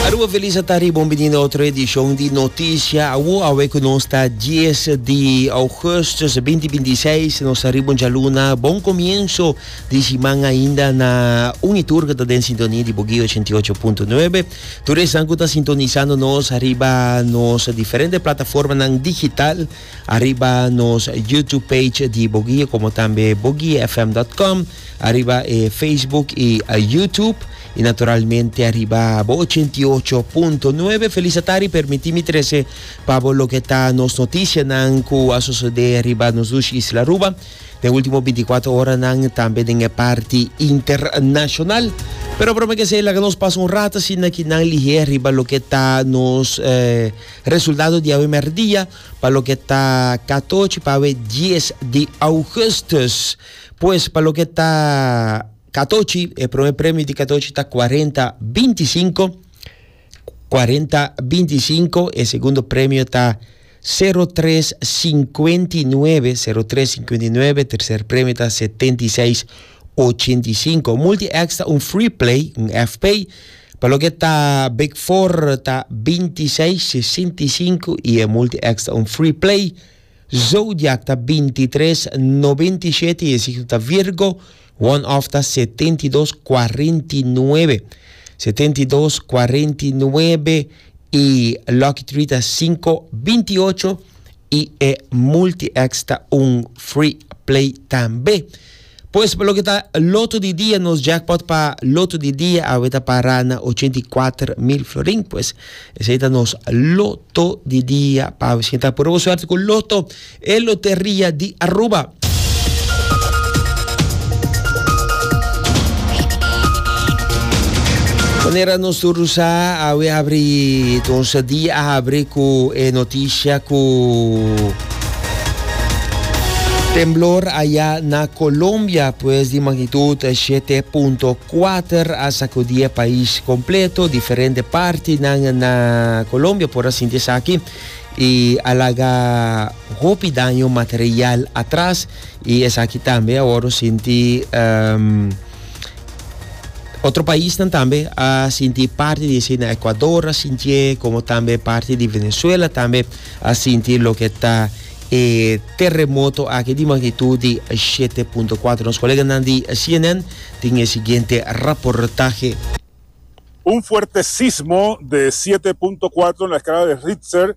Aruba Feliz a ta riba un bini na otro edishon di Notisha Awo. Awe ku nos ta dies di ougustus binti binti seis, nos ta riba un djaluna. Bon komienso di siman ainda na un i tur ku ta den sintonia di Bogey ochenta i ocho punto nuebe. Tur esnan ku ta sintonisando nos riba nos diferente plataformanan digital. Ariba nos YouTube page di Boguie como tambe boguiefm.com, ariba e Facebook y YouTube y naturalmente ariba bo 88.9. Feliz atari, permiti mi trece pa bo lo que ta nos noticia nan cu a sucede ariba nos dushi Isla Aruba den ultimo 24 hora nan tambe den e parti internacional. Pero prome que esey laga nos pasa un rato asina ki nan lihe ariba lo que ta nos eh, Resultado di awe mèrdia pa loke ta katochi pa awe dies di ougùstùs. Pues pa loke ta katochi, e promé premio di katochi ta kuarenta binti sinku, kuarenta binti sinku, e segundo premio ta sero tres singkuenti nuebe, sero tres singkuenti nuebe, terser premio ta setenta i seis Ochenta i sinku. Multi-X ta un free play, un FP, pa loke ta Big Four ta binti seis, sesenta i sinku, i e Multi-X ta un free play. Zodiac ta binti tres, nobenta i shete, i e signo ta Virgo. One Off ta setenta i dos, kuarenta i nuebe. Setenta i dos, kuarenta i nuebe, i Lucky Three ta sinku, binti i ocho, i e Multi-X ta un free play tambe. Pues pa loke ta loto di dia nos jackpot pa loto di dia awe ta para na ochenta i kuater mil florin pues esei ta nos loto di dia pa awe siña ta purba bo suerte ku loto e loteria di Aruba. Manera nos tur do sa awe abri entonse dia a abri ku e noticia ku. Temblor a ya na Colombia pues di magnitud shete punto kuater a sakudí e pais kompleto. Diferente partinan na Colombia por a sinti esaki i a laga hopi daño material atras i esaki tambe awor nos sinti. Otro paisnan tambe a sinti parti di esei. Na Ecuador a sintié, como tambe parti di Venezuela tambe a sinti loke ta e terremoto aki di magnitud di 7.4. Nos koleganan di CNN tin e siguiente raportahe. Un fuerte sismo de siete punto cuatro na escala de Richter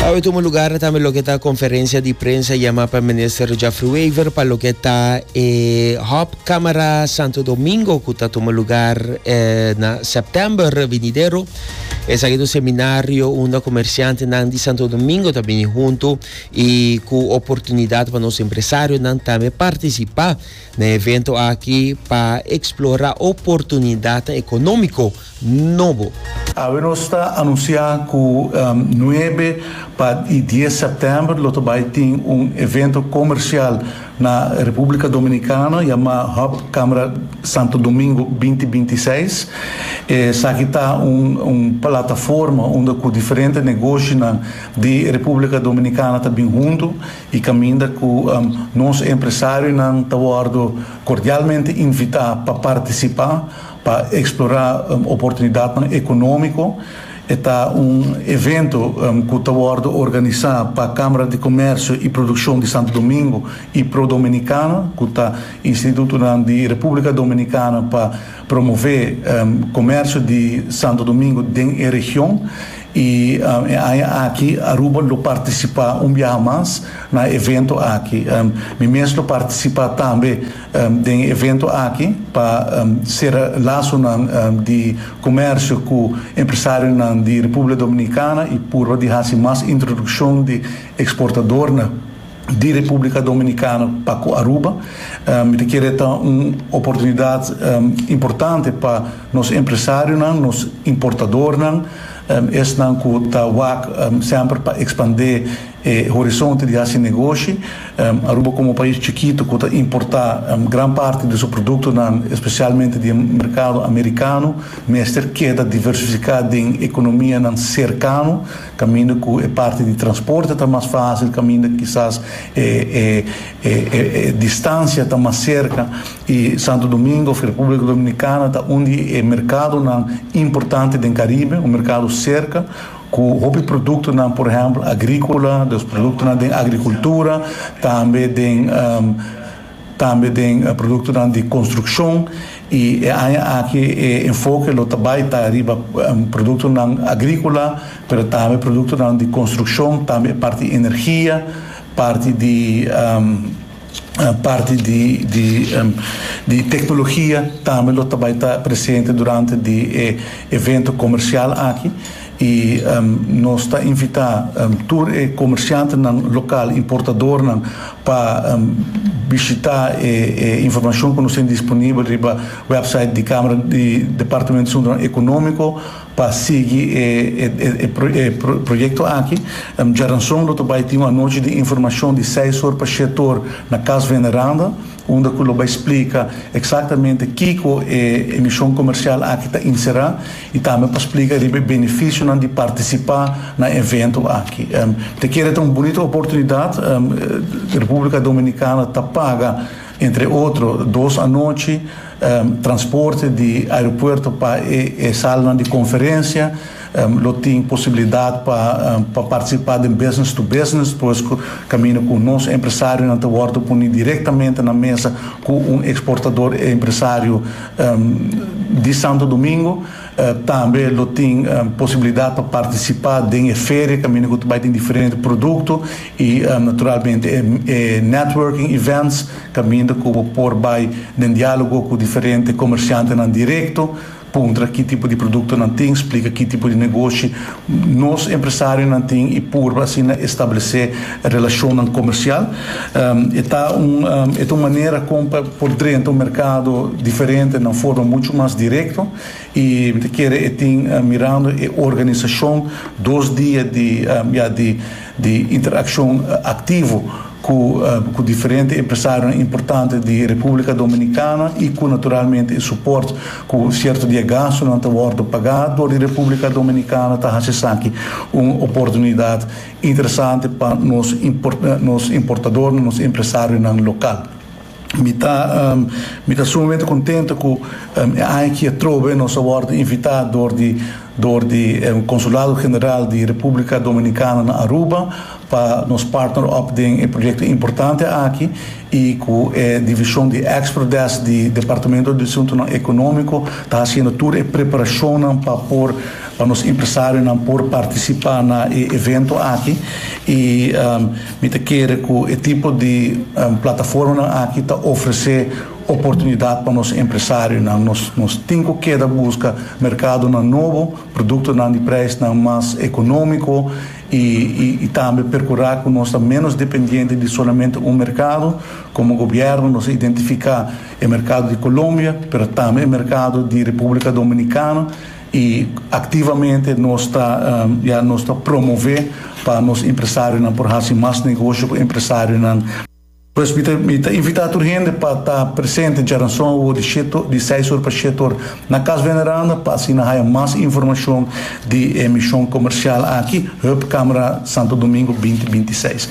Awe tuma lugar tambe loke ta conferencia di prensa yama pa minister Geoffrey Wever pa loke ta e hop camera Santo Domingo cu ta tuma lugar na september vinidero. Esaki ta un seminario unda comerciantenan di Santo Domingo ta bini hunto y cu oportunidad pa nos empresarionan tambe participa. Na evento aki pa explora oportunidadnan economico nobo. Awe nos ta anuncia cu nuebe pa y dies september lo ta bay tin un evento comercial na Republica Dominicana yama Hub Camera Santo Domingo binti binti seis. Esaki ta un plataforma unda cu diferente negoshinan di Republica Dominicana ta bin hunto. I caminda cu nos empresarionan ta wordo cordialmente invita pa participa pa explora oportunidadnan economico. E ta un evento cu ta wordo organisa pa Camara di Comercio y Produccion di Santo Domingo y Prodominicana, cu ta institutonan di Republica Dominicana pa promove comercio di Santo Domingo den e region. I e aña aki Aruba lo partisipá un biaha mas na e evento aki. Mi mes lo partisipá tambe den e evento aki pa sera lasonan di komersio ku empresarionan di Republia Dominikana i purba di hasi mas introdukshon di eksportadornan. di Republica Dominicana pa cu Aruba. Mi ta kere ta un oportunidad importante pa nos empresarionan, nos importadornan, esnan cu ta wak semper pa expande e horizonte di haci negoshi. Aruba como un pais chikito cu ta importa gran parti di su productonan, especialmente di e mercado Americano, mester keda diversifica den economianan cercano. Caminda cu e parti di transporte ta mas facil, caminda kisas e distancia ta mas cerca y Santo Domingo of Republica Dominicana ta un di e mercadonan importante den Caribe, un mercado cerca cu hopi productonan por ehempel agricola, los productonan den agricultura, tambe den. Tambe den produktonan di konstrukshon i e aña aki e enfoke lo ta bai ta riba produktonan agríkola, pero tambe produktonan di konstrukshon, tambe e parti energia, parti di parti di di di teknologia tambe lo ta bai ta presente durante di e evento komersial aki. I nos ta invitá tur e komershantenan lokal, importadornan, pa bishitá e informashon ku nos tin disponibel riba wèpsait di Kámara di Departamento di Asuntonan Ekonómiko pa sigui e proyekto aki. Djaranson lo ta bai tin un anochi di informashon di seis or pa shèt or na Kas Veneranda. unda cu lo bay splica exactamente kico e emishon comercial aki ta inserá y tambe pa splica riba e beneficionan di participa na e evento aki. Te kere ta un bunito oportunidad, Republica Dominicana ta paga entre otro dos anochi transporte di aeropuerto pa e salannan di conferencia, Lo tin posibilidat pa partisipa den Business to Business pues kaminda ku nos empresarionan ta wòrdu puni direktamente na mesa ku un eksportador empresario di Santo Domingo. Tambe lo tin posibilidat pa partisipa den e feria kaminda ku ta bai tin diferente produkto i naturalmente e networking events kaminda ku bo por bai den diálogo ku diferente komersiantenan direkto. Puntra ki tipo di produkto nan tin, splika ki tipo di negoshi nos empresarionan tin i purba asina establesé relashonnan komersial. E ta un e ta un manera kon pa por drenta un merkado diferente na un forma muchu mas direkto i mi ta kere e tin mirando e organisashon dos dia di ya di di interakshon aktivo ku ku diferente empresarionan importante di Republika Dominikana i ku naturalmente e suport ku sierto di e gastunan ta wòrdu pagá dor di Republika Dominikana ta hasi esaki un oportunidat interesante pa nos nos importadornan, nos empresarionan lokal. Mi ta mi ta sumamente contento cu e aña aki atrobe nos a wordo invita door di door di e Consulado General di Republica Dominicana na Aruba pa nos partner op den e proyecto importante aki y cu e Division di Export Desk di Departamento di Asuntonan Economico ta haciendo tur e preparacionnan pa por pa nos empresarionan por participa na e evento aki y Mi ta kere ku e tipo di plataformanan aki ta ofresé oportunidat pa nos empresarionan. Nos tin ku keda buska merkadonan nobo, produktonan di preisnan mas ekonómiko i tambe perkurá ku nos ta ménos dependiente di solamente un merkado. Komo gobièrnu nos a identifiká e merkado di Colombia, pero tambe e merkado di Repúblika Dominikana. Y activamente nos ta ya nos ta promove pa nos empresarionan por haci mas negocio cu empresarionan. Pues mi ta mi ta invita tur hende pa ta presente djaranson awo di shete di seis or pa shete or na Cas Veneranda pa asina haya mas informacion di e mision comercial aki Hub Camera Santo Domingo binti binti seis.